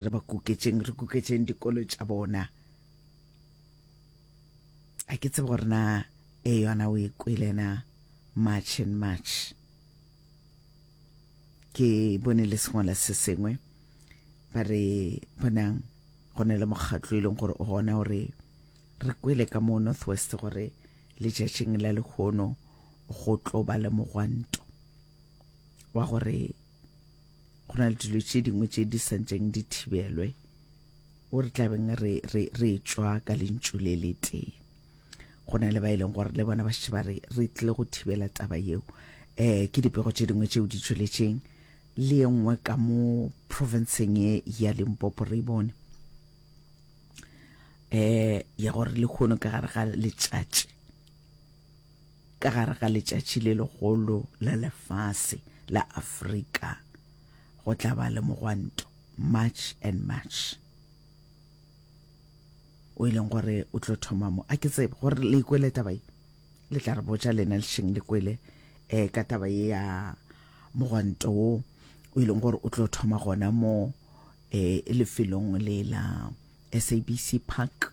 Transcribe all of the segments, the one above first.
Re ba kuketšeng, re kuketšeng dikolo tša bona. A ke tsebe gore na e yona o e kwele na March and March. Ke bone le sengwala se sengwe ba re bonang go ne le mokgatlo e leng gore o gona gore re kwele ka mo northwest gore letšatšing la lehono go tlo ba le mogwanto wa gore Go na le dilo tše dingwe tše di santšeng di thibelwe o re tlabeng re, re, re tšwa ka lentšu le le tee go na le ba e leng gore le bona ba šetše ba re re tlile go thibela taba yeo um ke dipego tše dingwe tšeo di tšweletšeng le ye nngwe ka mo provinceng ye ya limpopo re e bone um ya gore le kgono ka gare ga letšatši Ka gare ga letšatši le legolo la lefase la Afrika go tla ba le mogwanto, March and March, o e leng gore o tlo thoma mo. A ke tsebe gore le ikwele taba ye, le tla re botša lena lešeng le kwele um ka taba ye ya mogwanto wo o e leng gore o tlo thoma gona mo um lefelong le la SABC Park.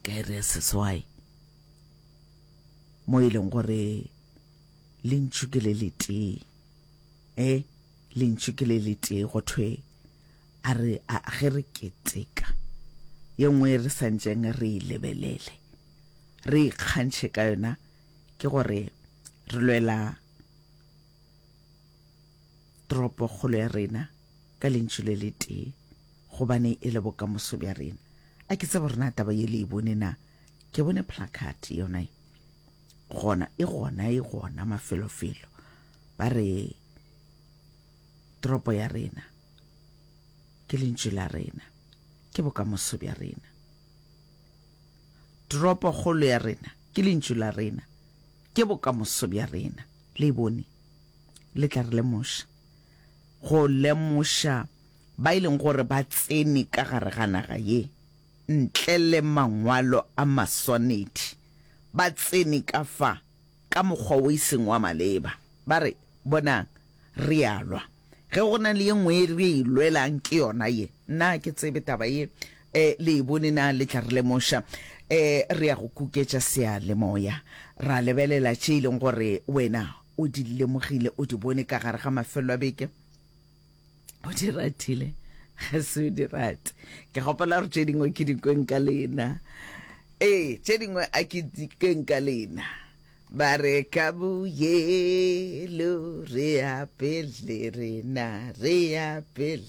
ka iri ya seswai mo e leng gore lentšu ke le letee e lentšu ke le letee go thwe a re a ge re keteka ye nngwe re santseng re e lebelele re ikgantšhe ka yona ke gore re lwela toropokgolo ya rena ka lentšu le le tee, gobane e le bokamoso bja rena. A ke tsebe gore na taba ye le e bone na? Ke bone placard yona e gona, e gona, e gona mafelofelo. Ba re toropo ya rena ke lentšu la rena, ke bokamoso bja rena. Toropokgolo ya rena ke lentšu la rena, ke bokamoso bja rena. Le e bone? le tla re lemoša, go lemoša ba e leng gore ba tsene ka gare ga naga ye ntle le mangwalo a maswanedi, ba tsene ka fa ka mokgwa o e seng wa maleba. Ba re, Bonang, re a lwa. Ge go na le ye nngwe e re e lwelang, ke yona ye. Nna ga ke tsebe taba ye, um le e bone na le tla re lemoša. Um re ya go kuketša seyalemoya, ra lebelela tše e leng gore wena o di lemogile o di bone ka gare ga mafelo a beke o di ratile ga se o di rate ke gopola gore tše dingwe ke dikweng ka lena ee tše dingwe a ke dikweng ka lena ba re ka boyelo re apele rena re apele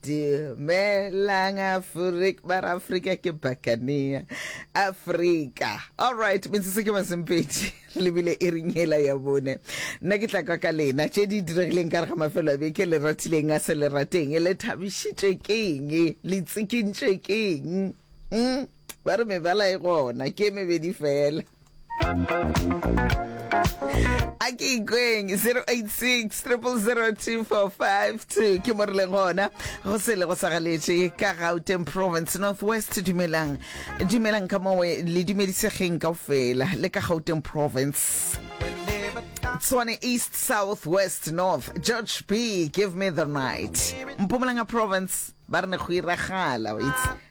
Dumelang Afrik ba ra Afrika ke bakania Afrika all right metsotso ke masempedi lebile e rinyela ya bone nna ke tla kwa ka lena tše di diregileng ka re ga mafelo a beke le ratileng a se le rateng le thabišitšwe keng le tsikintšwe keng mm? Ba re mebala e gona, ke e mebedi fela. a ke ikweng 0860002452 ke mo re leng gona go se le go sa galetše ka gauteng province northwest dumelang dumelang ka mowe le dumedisegeng kao fela le ka gauteng province Tswane East, South, West, North, George B, Give Me the Night. Mpumalanga Province, ba re ne go iragala, wa itse.